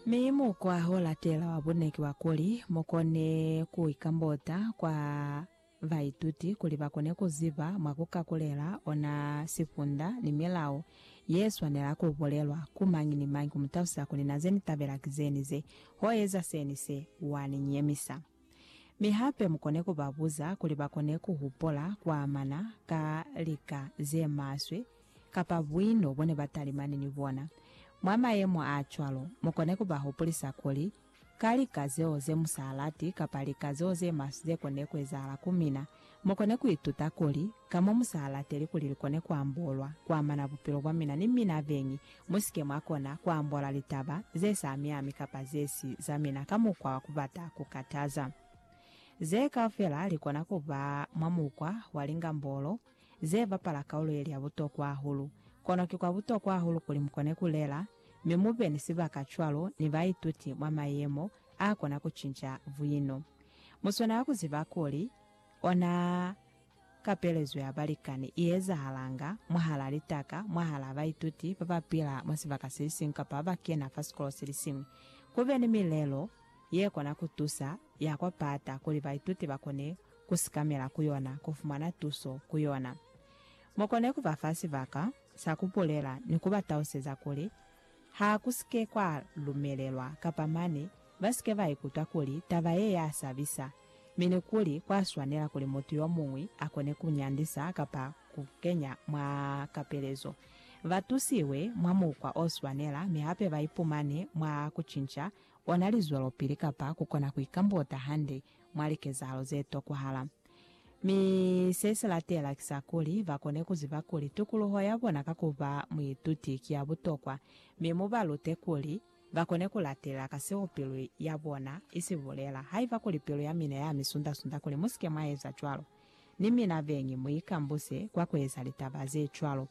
Mi mukwa o latela wa bune ki wa kuli, mu kone ku ikambota kwa baituti kuli ba kone ku ziba mwa ku ka kulela ona sifunda ni milao ye swanela ku bulelwa ku mañi ni mañi ku mu talusa kuli na ze ni tabela ki ze ni ze, ho eza se ni se, wa ni nyemisa. Mi hape mu kone ku ba buza kuli ba kone ku hupula ku amana ka lika ze maswe kapa buino bo ne ba talimani ni bona. Mwa mayemo a cwalo, mu kone ku ba hupulisa kuli, Ka lika zeo ze mu sa lati kapa lika zeo ze maswe ze konile ku ezahala ku mina, mu kone ku ituta kuli, Ka mo mu sa lateli kuli li kone ku ambolwa, ku amana bupilo bwa mina ni mina beñi, mu si ke mwa kona ku ambola litaba ze sa miami kapa ze si za mina ka mukwa wa ku bata ku kataza. Ze kaufela li kona ku ba mwa mukwa wa lingambolo. ze bapala kaulo ye li ya butokwa hahulu. Kono ki kwa butokwa hahulu kuli mu kone ku lela mi mu be ni sibaka cwalo ni baituti mwa mayemo a kona ku cinca buino. Mu swanela ku ziba kuli, ona kapelezo ya balikani i ezahalanga mwahalaa litaka, mwahalaa baituti ba ba pila mwa sibaka se siñwi kapa ba ba kena fa sikolo se siñwi. Ku be ni milelo ye kona ku tusa ya kwa pata kuli baituti ba kone ku sikamela ku yona, ku fumana tuso ku yona. Mu kone ku ba fa sibaka sa ku bulela ni ku ba tauseza kuli ha ku si ke kwa lumelelwa kapa mane ba si ke ba ikutwa kuli taba ye ya sabisa, mi ni kuli kwa swanela kuli mutu yo muñwi a kone ku nyandisa kapa ku kenya mwa kapelezo, ba tusiwe mwa mukwa o swanela mi hape ba ipumane mwa ku cinca ona lizwelopili kapa ku kona ku ikambota hande mwa likezahalo ze tokwahala. Mi se si latela ki sa kuli, ba kone ku ziba kuli tukuluho ya bona ka ku ba muituti ki ya butokwa, mi mu ba lute kuli ba kone ku latelela ka seo pilu ya bona i si bulela. Haiba kuli pilu ya mina ya mi sunda-sunda kuli mu si ke mwa eza cwalo, ni mina beñi mu ikambuse kwa ku eza litaba ze cwalo.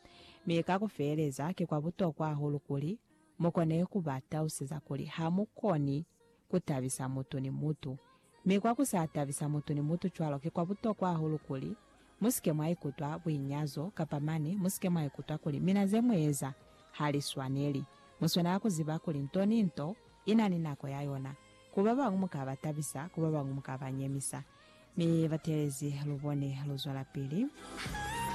Mi ka ku feeleza, ki kwa butokwa hahulu kuli Mu kone ku ba taluseza kuli ha mu koni ku tabisa mutu ni mutu, mi kwa ku sa tabisa mutu ni mutu cwalo ki kwa butokwa hahulu kuli mu si ke mwa ikutwa buinyazo kapa mane mu si ke mwa ikutwa kuli mina ze mu eza ha li swaneli. Mu swanela ku ziba kuli nto ni nto i na ni nako ya yona. Ku ba bañwi mu ka ba tabisa, ku ba bañwi mu ka ba nyemisa. Mi bateelezi, lu bone, lu zwelapili.